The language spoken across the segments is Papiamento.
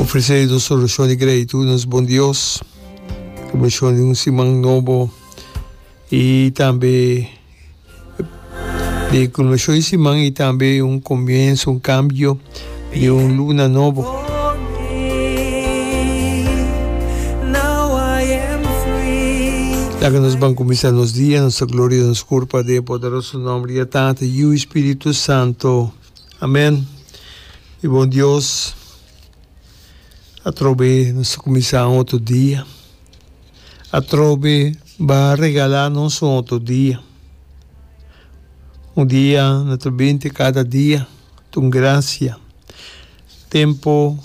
Ofresé nos orashon di gratitud nos Bon Dios pa bendicionnan di un siman nobo i tambe di culminacion di siman i tambe un comienso, un cambio di un luna nobo. Laga nos ban cuminsa nos dia, nos ta gloria nos curpa den poderoso nomber di a Tata, Yu i Spiritu Santo. Amen mi bon Dios atrobe nos a cuminsa un otro dia atrobe ba regala nos un otro dia un dia na ta binti cada dia ta un gracia tempo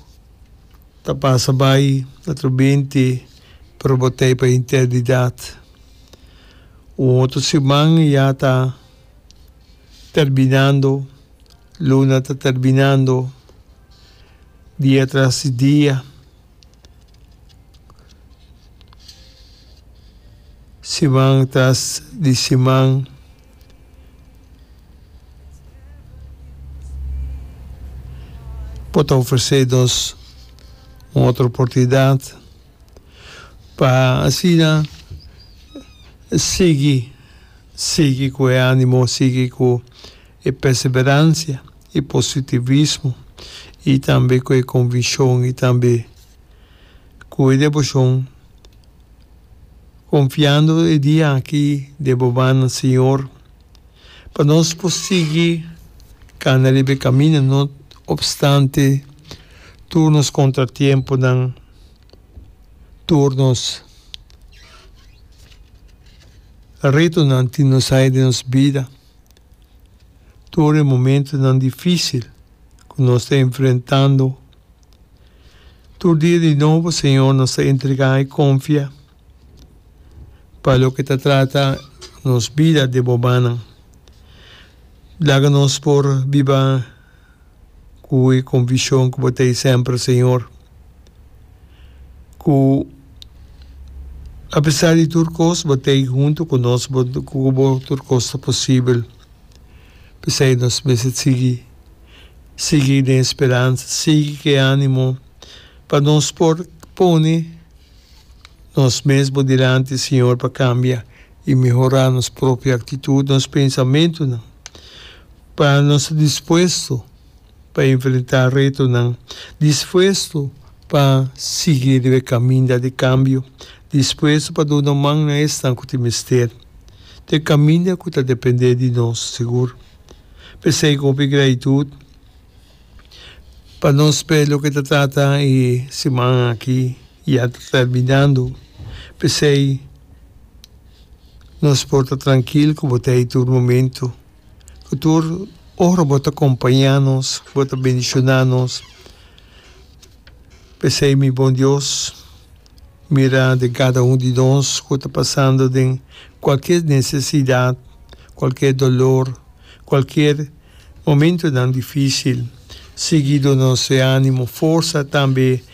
ta pasa bai na ta binti pero bo ta e pa eternidad un otro siman yata. terbinando, luna ta terbinando, dia tras di dia, siman tras di siman. Por ta ofresé nos un otro oportunidat. pa asina sigui, sigui cu e animo, sigui cu e perseverancia, e positivismo y tambe cu e conviccion y tambe cu e devocion, confiando e dia aki den bo man nan Señor, pa nos por sigui cana riba e camino no obstante tur nos contratiemponan. tur nos retonan tin nos haya den nos bida, tur e momentonan dificil cu nos ta enfrentando. Tur dia di nobo, Señor, nos ta entrega y confia pa loke ta trata nos bida den bo manan. Laga nos por biba. ku e konvishon ku bo ta e semper, Señor, ku apesar di tur kos bo ta ei huntu ku nos, bo ku bo tur kos ta posibel. P'esei nos mester sigui, sigui den e speransa, sigui k'e animo pa nos por pone. Nos mes bo dilanti, Señor, pa cambia y mehora nos propio actitud, nos pensamentonan, pa nos ta dispuesto pa enfrenta retonan, dispuesto pa sigui riba e caminda di cambio, dispuesto pa duna man na esnan cu tin mester, na e caminda cu ta depende di nos, sigur. P'esey cu hopi gratitud. Pa nos p'e loke ta trata e siman aki ya ta terminando, p'esei nos por ta trankil ku bo ta ei tur momento, ku tur ora bo ta kompañá nos, bo ta bendishoná nos. P'esei mi Bon Dios mira den kada un di nos ku ta pasando den kualkier nesesidat, kualkier dolor, kualkier Momentonan difísil, seguido nos e ánimo, forsa, tambe